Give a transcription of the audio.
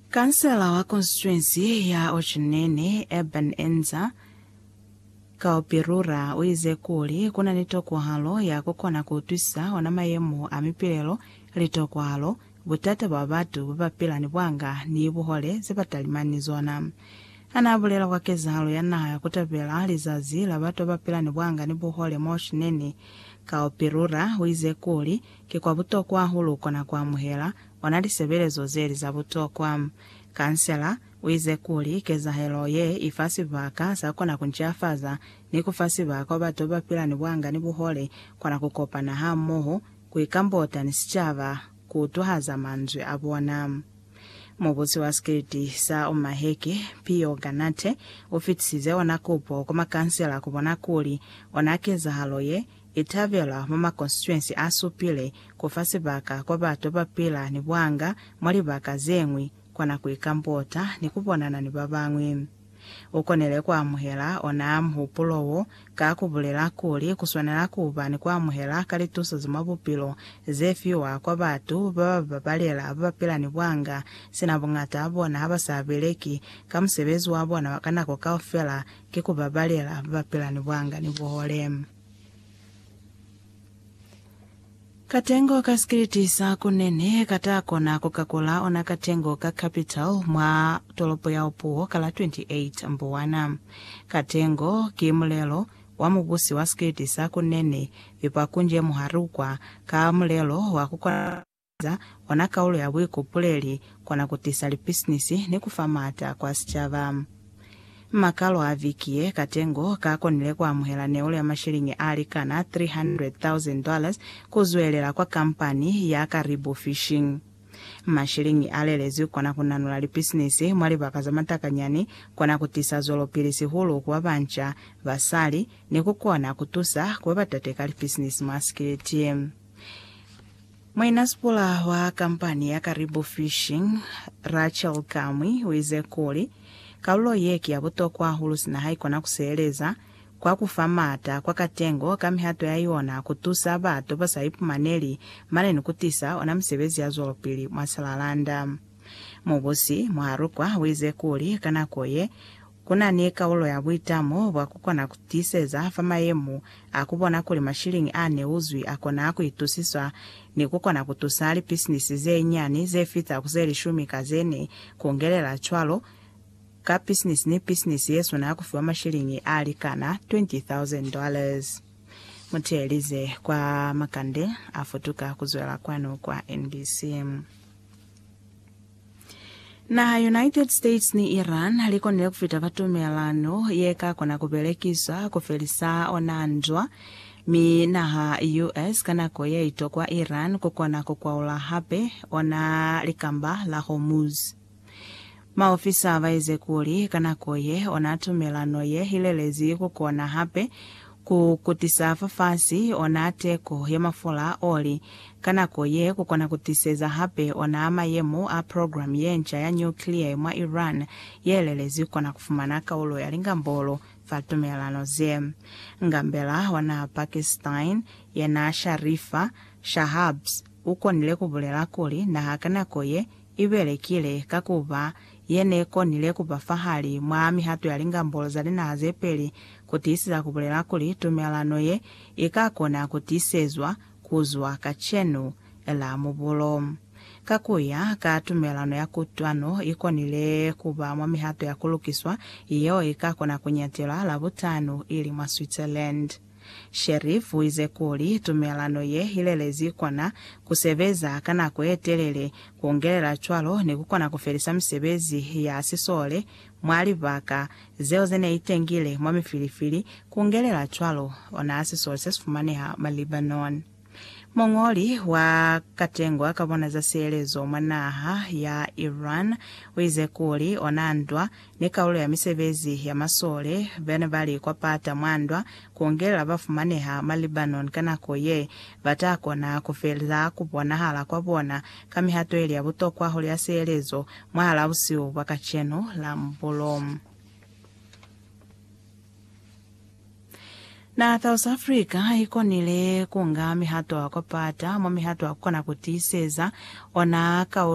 Kansela wa konstituensi ya Ocinene, Eben Enza Kaopirura, uize kuli kuna ni tokwahalo ya kukona kuutwisisa ona mayemo a mipilelo, litokwahalo, butata bwa batu babapila ni bwanga ni buhole zebatalimani zona. Hanaabulela kwa kezahalo ya naha ya kutabela lizazi la batu babapila ni bwanga ni buhole mwa Ocinene, Kaopirura uize kuli, Ki kwa butokwa hulu kona ku amuhela ona lisebelezo zeli za butokwa. Kansela uize kuli, Kezahelo ye ifa sibaka sa kona ku ncafaza ni ku fa sibaka wa batu babapila ni buanga ni buhole kona ku kopana hamoho, ku ikambota ni sicaba, ku utwahaza manzwi a bona. Mubusi wa sikiliti sa Omaheke, Pio Ganate, u fitisize ona kupo kwa makansela ku bona kuli ona kezahalo ye I tabelwa mwa makonstituensi a supile ku fa sibaka kwa batu ba pila ni bwanga mwa libaka ze ñwi, kona ku ikambota ni ku bonana ni ba bañwi. U konile ku amuhela onaa muhupulo wo ka ku bulela kuli ku swanela ku ba ni ku amuhela ka lituso za mwa bupilo ze fiwa kwa batu ba ba babalela ba ba pila ni bwanga, sina buñata bona ha ba sa beleki ka musebezi wa bona wa ka nako kaufela Ki ku ba balela ba ba pila ni bwanga ni buhole. Katengo ka sikiliti sa ku nene ka ta kona ku ka kula ona katengo ka capital mwa tolopo ya Opuwo ka la 28 Mbuwana. Katengo ki mulelo wa mubusi wa sikiliti sa ku nene, yopa kunje muhali ukwa ka mulelo wa ku kona za ona kaulo ya buikupuleli kona kutisa lipisinisi ni kufa maata kwa sicaba. Makalo a viki ye, Katengo ka konile kuamuhela neulo ya mashilingi alikana 300,000 dollars kuzwelela kwa kampani ya Karibu Fishing. Mashilingi alelezwi kona kunanula lipisinisi mwa libaka za matakanyani, kona kutisa zwelopili sihulu ku babanca, basali, ni kukona kutusa kuba batate ka lipisinisi mwa sikiliti. Mwena Sipula wa kampani ya Karibu Fishing, Rachel Kamwi, uize kuli, Kalulo ye ki ya butokwa hahulu sina haikona kuseeleza kwa kufa maata kwa katengo ka mihato ya yona kutusa batu basa ipumaneli mane ni kutisa ona misebezi ya zwelopili mwa Salalanda. Mubusi Muharukwa uize kuli ka nako ye, Ku na ni kaulo ya buitamo bwa ku kona ku tiiseza fa mayemo a ku bona kuli mashiliñi a ne u zwi a kona ku itusiswa ni ku kona ku tusa lipisinisi ze nyani ze fita ku ze lishumi ka ze ne. Ku ngelela cwalo, ka pisinisi ni pisinisi ye swanela ku fiwa mashiliñi a likana $20,000. Muteelize kwa Makande a futuka ku zwela kwanu kwa NBC. Naha United States ni Iran likonile kufita fa tumelano yekakona kubelekiswa kufelisa ona ndwa, mi naha US ka nako yeitokwa Iran kukona kukwaula hape ona Likamba la Hormuz. Maofisa baize kuli ka nako ye ona tumelano ye ilelezi kukona hape Ku kutisa fafasi ona teko ya mafola a oli ka nako ye ku kona ku tiseza hape ona mayemo a program ye nca ya nuclear mwa Iran ye lelezi kona ku fumana kaulo ya lingambolo fa tumelano ze. Ngambela ona Pakistan, yena Sharifa Shahabz, u konile ku bulela kuli naha ka nako ye I belekile, ka ku ba ye ne konile ku ba fahali mwa mihato ya lingambolo za linaha ze peli ku tiisisa ku bulela kuli tumelelano ye i ka kona ku tiisezwa ku zwa kacenu ela mubulo. Ka ku ya ka tumelelano ya kutwano, i konile ku ba mwa mihato ya ku lukiswa yeo i ka kona ku ñatelwa Labutano, ili mwa Switzerland. Sheriff uize kuli tumelano ye ilelezi kona kusebeza ka nako yetelele, kuungelela cwalo ni kukona kufelisa misebezi ya sisole mwa libaka zeo zene itengile mwa mifilifili, kuungelela cwalo ona sisole sesifumaneha mwa Lebanon. Muñoli wa Katengwa ka Bona za Sielezo mwa naha ya Iran uize kuli ona ndwa ni kalulo ya misebezi ya masole bene bali kwa pata mwa ndwa kuungelela ba fumaneha mwa Lebanon ka nako ye ba ta kona kufeza kubonahala kwa bona ka mihato ili ya butokwa hulu ya sielezo mwahala busihu bwa kacenu la mbulo. Naha ya South Africa i konile ku nga mihato ya ku pata mwa mihato ya ku kona ku tiiseza ona ka